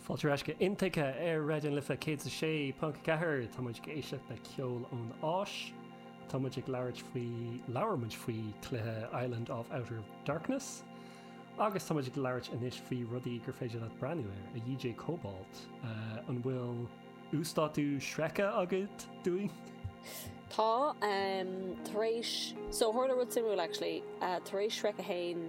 Fáilte ar ais go Intuigthe ar Raidió na Life 106.4. Tá muid ag éisteacht le ceol ón Áis. Tá muid ag labhairt faoi, labhair muid faoi cluiche Island of Outer Darkness. Agus tá muid ag labhairt anois faoi rudaí gur féidir leat breathnú air, a DJ Cobalt. An bhfuil uasdátú Shrek agat dúinn? Tá, tar éis, so tharla rud suimiúil actually, tar éis Shrek a haon,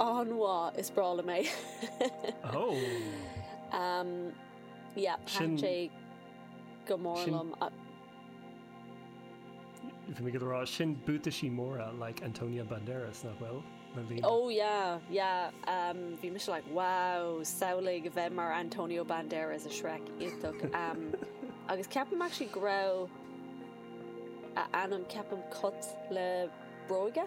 An mhaith, is breá liom é. Sea, thaitin sé go mór liom. Bhí mé ag rá, sin buataisí móra le líonadh, like Antonio Banderas, nach bhfuil? Le líonadh. Ó, yeah, yeah. Bhí mise like, wow, samhlaigh a bheith mar Antonio Banderas i Shrek, iontach. Agus ceapaim actually go raibh a ainm, ceapaim Cat le Bróga?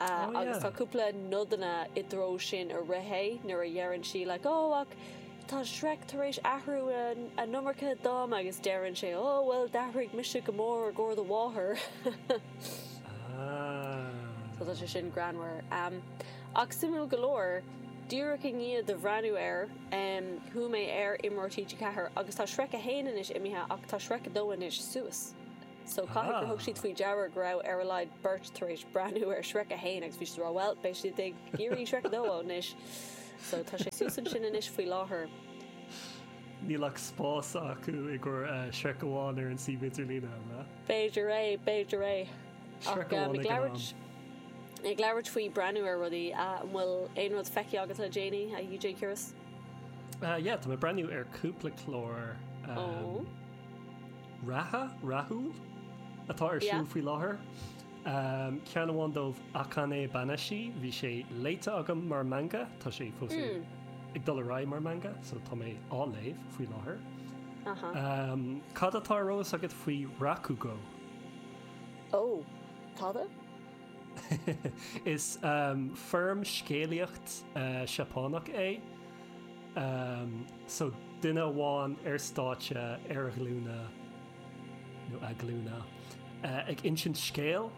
Agus tá cúpla nodanna i dtreo sin i rith é, nuair a deireann sí, like, Ó, ach tá Shrek tar éis athrú an iomarca dom, agus deireann sé, Ó, bhuel, d'athraigh mise go mór i gcomhair do mháthar. So tá sé sin greannmhar. Ach suimiúil go leor, díreach i ndiaidh dom breathnú air, chuaigh mé ar imreoir TG4 agus tá Shrek 1 anois imithe ach tá Shrek 2 anois suas. So caithfidh gur thug siad faoi deara go raibh ar a laghad beirt tar éis breathnú ar Shrek 1 agus bhí siad ag rá bhuel, beidh siad ag iarraidh Shrek 2 anois. So tá sé suas ansin anois faoi láthair. Níl ach spás acu i gcomhair Shrek amháin ar an suíomh idirlín, an ea? B'fhéidir é, b'fhéidir é. Shrek amháin ag an am. Ag labhairt faoi breathnú ar rudaí, an bhfuil aon rud feicthe agat le déanaí, a DJ Kiris? Yeah, tá mé ag breathnú ar cúpla clár. reatha, rathúil, atá ar siúl faoi láthair. Ceann amháin díobh, Akane Banashi, bhí sé léite agam mar manga, tá sé fós ag dul ar aghaidh mar manga, so tá mé á léamh faoi láthair. Cad atá ar eolas agat faoi Rakugo? Ó, tada? Is foirm scéalaíocht Sheapánach é. Umm, so duine amháin ar stáitse, ar a ghlúine, nó a glúine, ag insint scéil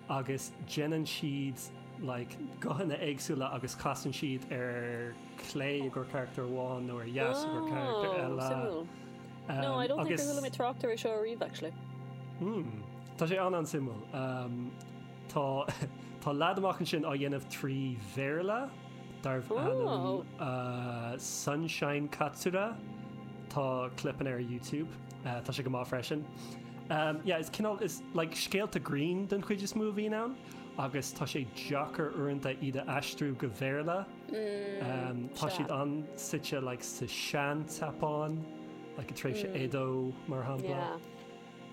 agus déanann siad like guthanna éagsúla agus casann siad ar chlé i gcomhair carachtar amháin nó ar dheis i gcomhair carachtar Oh, eile. suimiúil. Um, No, níor chuala mé agus- trácht air seo riamh actually. Hmm, Tá sé an an-suimiúil. Um, Tá tá leaid amuigh ansin á dhéanamh trí Bhéarla darb ainm Sunshine Katsura. Tá clip ann ar YouTube. Tá sé go maith freisin. Yeah is cineál is like scéalta grinn den chuid is mó a bhíonn ann agus tá sé deacair uaireanta iad a aistriú go Béarla. Tá siad an-suite like sa Sean-tSeapáin, like i dtréimhse Edo mar shampla.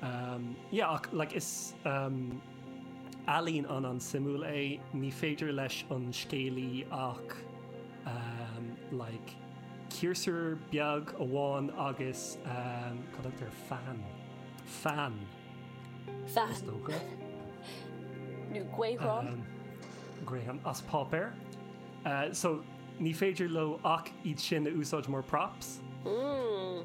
Um, yeah, ach, like, is, um, ealaín an-, an-suimiúil é. Ní féidir leis an scéalaí ach, um, like, ciarsúr beag amháin agus, um, cad a dtugtar, fean? Fean, Fean. is dócha. Nó gaothrán. Um, Graham, as páipéar. Uh, so, ní féidir leo ach iad sin a úsáid mar props. Mm.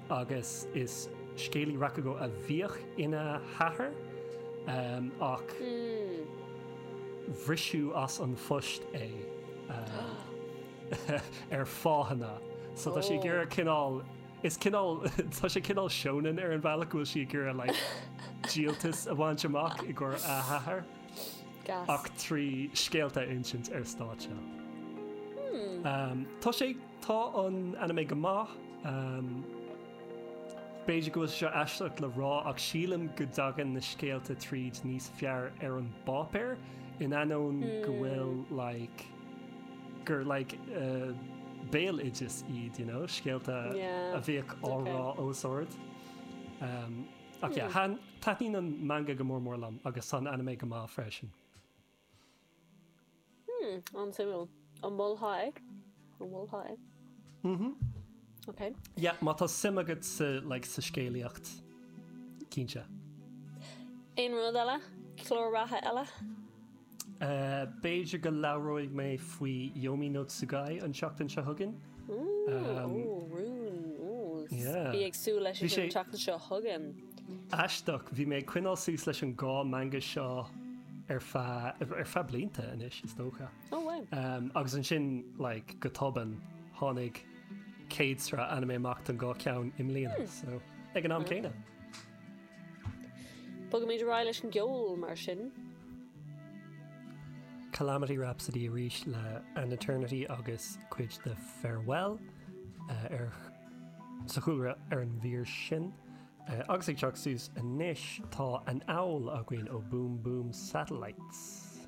agus is scéalaí rakugo a bhíodh ina hathair ach briseadh as an phost é ar fáthanna. So tá sí ag iarraidh cineál, is cineál, tá sé cineál shonen ar an bhealach go bhfuil sí ag iarraidh like díoltas a bhaint amach i gcomhair a hathar ach trí scéalta a insint ar stáitse. Tá sé Tá an anime go maith. B'fhéidir go bhfuil sé seo aisteach le rá ach sílim go dtagann na scéalta tríd níos fearr ar an bpáipéar in ainneoin go bhfuil like gur like béaloideas iad, you know, scéalta a bhíodh á rá os ard. Ach yeah, taitníonn an manga go mór mór liom agus tá an anime go maith freisin. Hmm, an-suimiúil. An molfá é? An molfá é? Mhm. Ok. Yeah, má tá suim agat sa, like, sa scéalaíocht, cinnte. Aon rud eile? Clár reatha eile? Uh, B'fhéidir go labhróidh mé faoi Yomi no Tsugai an tseachtain seo chugainn. Ooh, Um, oh, rún. Ooh, yeah. Bí ag súil leis Bhí an sé- rún teachta seo chugainn. Aisteach, bhí mé ag coinneáil suas leis an dá manga seo ar feadh, ar feadh blianta anois, is dócha. Oh wow. Agus ansin, like, go tobann, tháinig céad sraith anime amach don dhá cheann i mbliana, so, ag an am céanna. Bogaimid ar aghaidh leis an gceol, mar sin. Calamity Rhapsody arís le An Eternity agus cuid de Farewell ar. Sa chúlra ar an mír sin, agus ag teacht suas anois, tá An Owl againn ó Boom Boom Satellites.